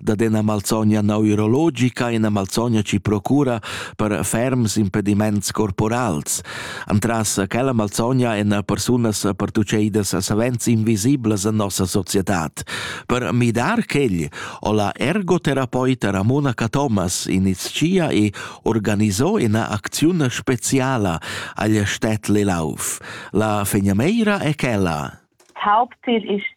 dad ina malsogna neurologica, ina malsogna ci procura per ferms impediments corporals. Antras quella malsogna en persunas pertucceidas savens invisiblas en nossa societad. Per midar quegl o la ergotherapeuta Ramonaca Thomas iniziia e organizò ina acziun speciala agl Städtli Lauf. La fegnameira è quella. Hauptziel ist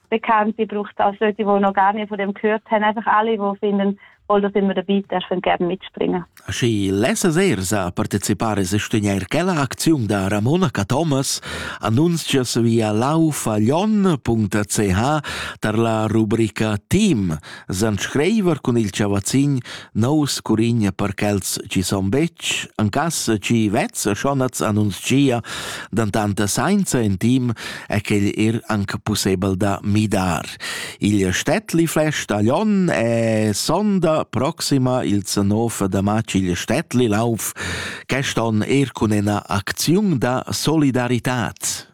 bekannt, die braucht auch solche, die noch gar nicht von dem gehört haben, einfach alle, die finden, voll sind wir dabei, darf man gerne mitspringen. Și lesa Zerza partecipare se studiar quella acziun da Ramonaca Thomas annunzia via laufaglion.ch tar la rubrica Team, san screiver cun il chavazzin nous curigna per quels chi son betg, an cass chi vezza schonaz annunzia dan tanta sainza in team e quel er anc pussebel da midar. Il Städtli Flash Talion è sonda proxima il 19 da matg il Städtli Lauf, queston er cun ena akziun da solidaritat.